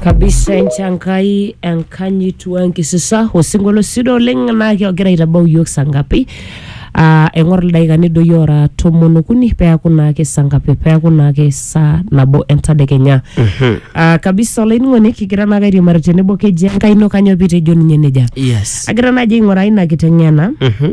kabisa enchankai enkanyit wenkisisa osinkolio sidai oleng naa kegira aitabau iyiook saa ngapi Ah, eng'or ildaikani doi ora tomon okuni peeku naake saa ngapi peeku naake saa nabo entadekenya Ah, kabisa olainining'oni kigira naake airiamari tenebo keji enkai ino kanyoo pitejo ninye nejia yes agira naaji aing'uraa ina kiteng'ena Mhm.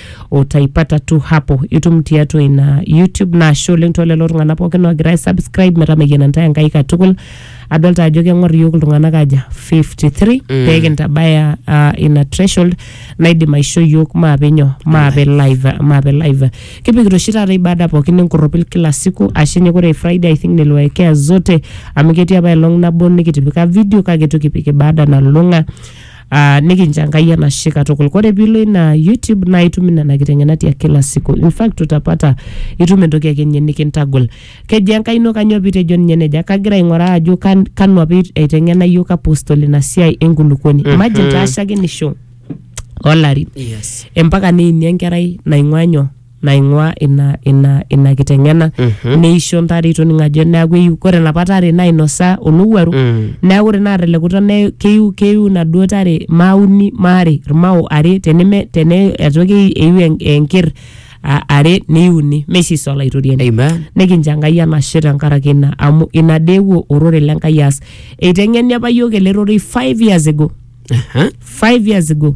utaipata tu hapo itum tiatua ina youtube naashe oleng too lelo tung'anak pookin oogira aisubscribe metameyiana ntae enkai katukul adolta ajo keng'or iyiook iltung'anak aja 53 mm. pee kintabaya uh, ina threshold naidim aisho iyiook maape nyoo maape live maape live kipikita oshi taata ibada pookin enkorropil kila siku ashe nye kore friday i think niliwaekea zote amu ketii apa elong nabo nikitipika video kake itu kipik ibada nalulung'a Uh, nikincha Enkai enashe katukul. Kore piilo ina YouTube naa itum nena kiteng'enat ya kila siku. In fact utapata itum entoki ake ninye nikintagol. Keji Enkai ino kanyoo pitejo ninye neja? Kagira aing'oraa ajo kan, kanu apa eiteng'ena yiok apostol ina siai enkulukuoni. Imagine taa shakenisho olarin Yes. empaka neini enkerai naing'ua nyoo naing'ua ina, ina, ina kiteng'ena Mhm. neisho ntare itoning ajo neaku eiu kore napa tare nainosa olowuaru Mm. neaku ore naa telekuta ne- keiu keiu naduo tare maauni maare irmao are teneme tene atoki eiu en- enker a- are neiuni meishiso olaitoriani Amen. nikincho enkai enashe tenkaraki ina amu ina dee eewuo orore le nkai aas eiteng'eni apa yiok ele rorei 5 years ago Aha. 5 years ago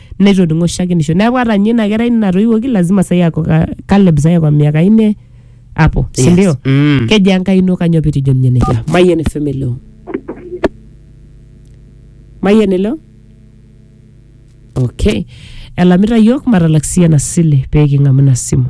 netoning'o shakenisho neeku ata ninye ina kerai natoiwuoki lazima sai ako ka- Caleb sai ako miaka ine hapo si Yes. ndio Mm. keji enkai ino kanyoo pitijo ninye nejia mayian FM elo mayian elo okay elamita yiok matalak sii ena sile pee king'amu ina simu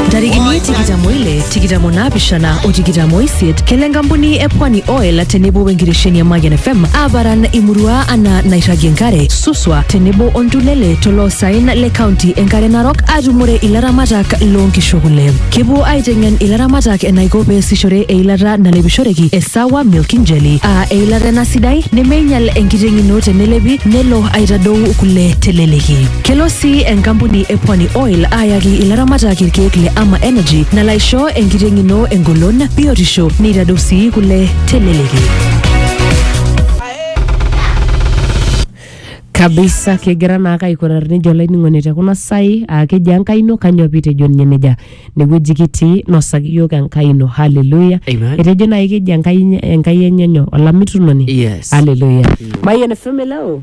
ntarikini tikitam oile tikitam onaapishana o tikitam oisiet kelo enkampuni e pwani oil tenebo wenkitesheni e mayian fm aaparan imurua anaa nairragie enkare suswa tenebo oltulele toloosaen le kaunti enkare narok aatumore ilaramatak loonkishu kule kepuo aiteng'en ilaramatak enaiko peesishore eilata nalepishoreki e sawa milking jelly aa eilata ena sidai nemeinyal enkiteng ino tenelepi nelo aitadou kule teleleki Kelo sii enkampuni e Pwani Oil aayaki ilaramatak irkeek le Ama Energy nalo aisho enkiteng' ino engolon, biotisho neitadou sii kule teleleki. kabisa kegira naake aikurar nejo olainining'oni te kuna sai aa keji enkai ino kanyoo piitejo ninye nejia inewueji kitii nosaki iyiook enkai ino haleluya Amen. etejo naaji keji enkai enye- enkai enye nyoo olamitunoni Yes. haleluya mayian fm hello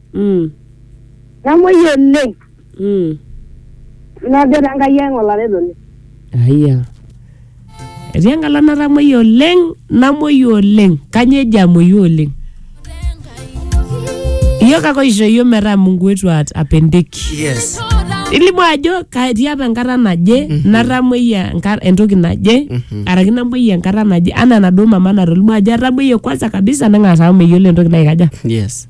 Mm. Namuoi oleng. Mm. Najo te Nkai ang olaretoni. Aya. Etii enkala natamoyia oleng, namoyia oleng. Kanyoo eji amoyu oleng? Iyiok ake oisho iyiok metaa Mungu wetu at- apendeki. Yes. Ilimu ajo katii apa enkata naje natamoyia enka- entoki naje araki namoyia enkata naje anaa enaduo mama natolimu ajo atamoyia kwanza kabisa neng'as aaku meyiolo entoki naikaja. Yes.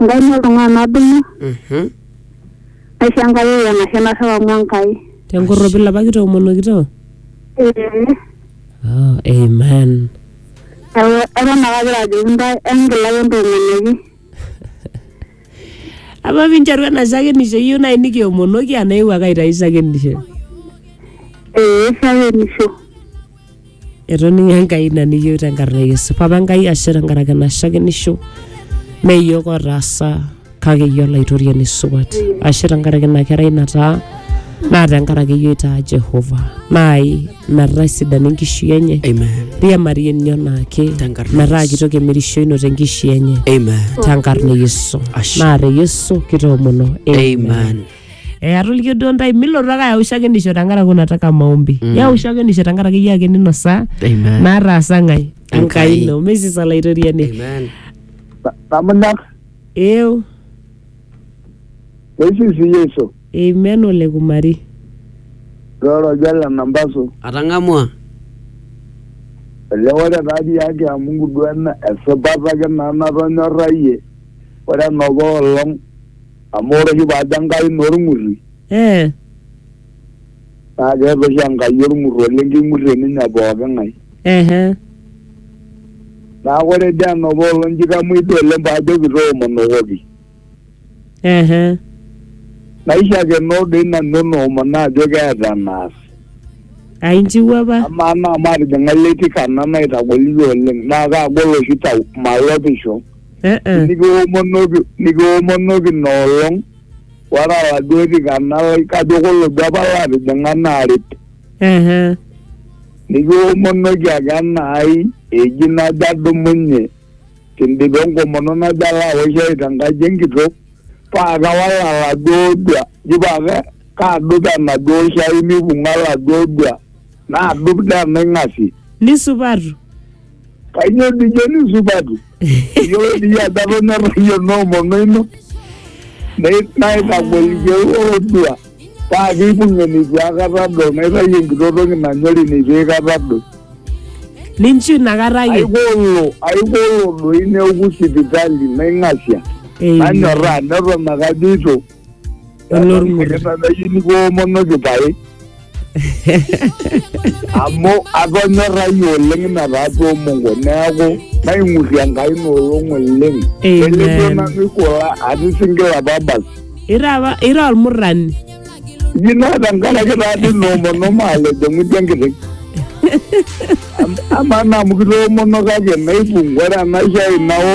Enkaina oltung'ani nadumu, Mhm. naisho Enkai ewuo enashe narrep amu Enkai. Tenkorropil apa kitoomonokito. Ee, Oh, amen. neeku eton ake agira ajoki intae engila ake entoomonoki. Apa pinteru ena shakenisho iyieu nai nikiomonoki anaa iewuo ake aitayu shakenisho. Ee, shakenisho. etoning'o enkai ina niyieu tenkarna e yesu papa enkai ashe tenkaraki ena shakenisho mee iyiook otaasa kake iyie olaitoriani supat ashe tenkaraki ina kerai nataa naa tenkaraki iyie oitaa jehova naai metaa sidani enkishui enye Amen. riamarie ninye onaake Tenkarna e metaa Yesu. kitoki emirishoino tenkishui enye Amen. tenkarna e yesu Ashe. naa te yesu kitoomono Amen. Eh, atolikio duo ntae milotu ake ayau shakenisho tenkaraki unataka maombi mm. yau shakenisho tenkaraki iyie ake ninosa Amen. naataasa ng'ae Enkai. enkai ino mesis olaitoriani Amen. Tamunak, eu eisisi Yesu, amen ole kumari roro jala nambasu, Atang'amua. ele ore taadi yake amu nguduana esipata ake naa natonyorrayie, ore enapa olong Amu ore oshi paajo Enkai naa olng'urri. Ee. Naa keeta oshi Enkai olng'urr oleng keing'urrie ninye pooki ng'ae. Ehe. Neaku ore dii enopa olong nji kamuoi dii oleng paajoki toomonokoki. Ehe. Naishakenoo doi nanu enoomono ajo keeta enaas. Aa inchiwuo apa? Amaa naa matijing'a iletikana naitagol iyie oleng naa kaagol oshi tau malopisho. Eh, eh. nikiwomonoki nikiwomonoki ina olong ore aladuo tikana lai kajo kolobi apa laatijing'a naaret Ehe. nikiwomonoki ake enaai eji najo adumunye kindipa enkomono najo alo awosh ai tenkaji enkitok paa kawal aladuo dua ji paa ke- kaadup enaduo shai mibung'a aladuo dua naadup tenaing'asie Nisupatu. Kanyoo dijoni supatu? Iyiolo dii ajo atonyorra iyie noomono ino nei- naitagol iyieu olodua paa keipung' eneitu aikata adol naitayu enkito toki nanyori neitu aikata adol. Ninchu inakata ake. Aikolo aikolo doi neoku sipitali naing'asia. Eiyo. Nanyorraa neton ake ajoito olormur Kitadayuni koomonoki pae. Amu atonyorrayie oleng ina tatua Mungu neaku naing'urrie Enkai ina olong oleng. Amen. Nelimu nanu ikula atii single apa basi. ira apa ira olmurrani Iji naa tenkaraki taadii noomono maalejo ng'udi enkiteng. Am- Amaa naa amu kitoomono kake naipung ore enaisho ai nao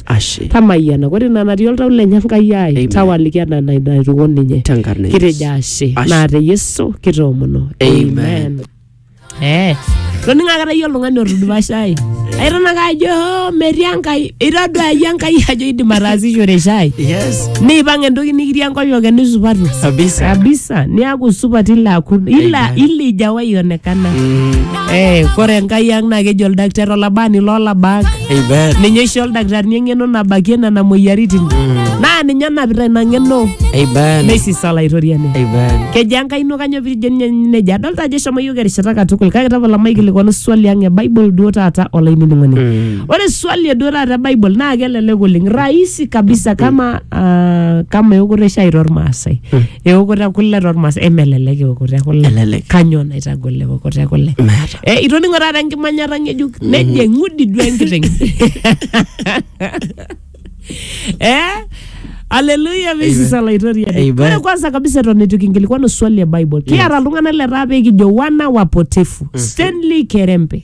ashe tamayiana ore ina natii oltau lenye enkai ai Amen. tawaliki ena ina naituko ninye tenkarna e Yesu. kitejo ashe Ashe. naa te yesu kitoomono Amen. Eh, toning akata iyie oltung'ani otudupasha ai aitanaka ajo "Oh, metii enkai itaduayie enkai ajo idim ataasishore shai yes niipang entoki nikitii enkoyoke nisupatu kabisa kabisa niaku supat ila akun ila Amen. ila ijawaionekana Mm. Eh, kore enkai ang naa keji oldakitari olabani loolabak Amen. ninye oisho oldakitarini eng'eno nabakie nena moyiaritin naa ninye onapita ina ng'eno Amen. neisisa olaitoriani Amen. kejaa enkai ino kanyoo piijo ninye nejia adolta ajo eshomo yiok erishata katukul kake tapala maikilikuanu swali ang e bible duo taata olainining'oni ore swali eduo taata e bible naa kelelek oleng rahisi kabisa kama ah, kama eokoto e shai tormaasai eokoto e kule tormas emelelek eokoto e kule Elelek. kanyoo naitagol eokoto e kule Meeta. Eh, itoning'o taata enkimanyata ng'ejuk nejo eng'udi duo enkiteng eh? aleluya misis olaitoriani Amen. ore kwanza kabisa eton eitu kinkilikuanu swali e bible kiata iltung'anak letaa pee kijo wana wapotefu stanley kerembe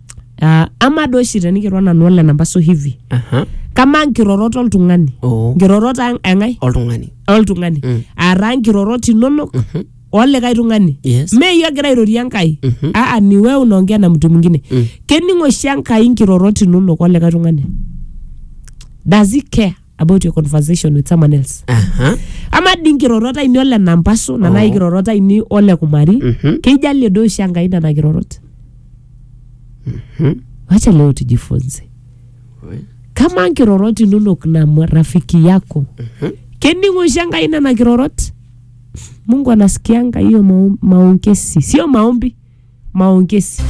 Ah, ama doi oshi tenikiro nanu ole nampasu hivi aha, kamaa nkirorot oltung'ani oo, nkirorot ang- eng'ae oltung'ani oltung'ani Mm. aataa nkirorot inonok Mhm. olikae tung'ani Yes. me iyie ogira airorie enkai Mhm. aa ni wewe unaongea na mtu mwingine Mm. kening oshi enkai nkirorot inonok olikae tung'ani does he care about your conversation with someone else Aha. ama dii nkirorot ainei ole nampasu nana Oh. kirorot ainei ole kumari Mhm. keijalie doi oshi enkai nena kirorot wacha leo tujifunze Oi. kama nkirorot inonok na mwa- rafiki yako kening'o oshi enkai nena kirorot mungu anasikianga hiyo mao- maongezi sio maombi maongezi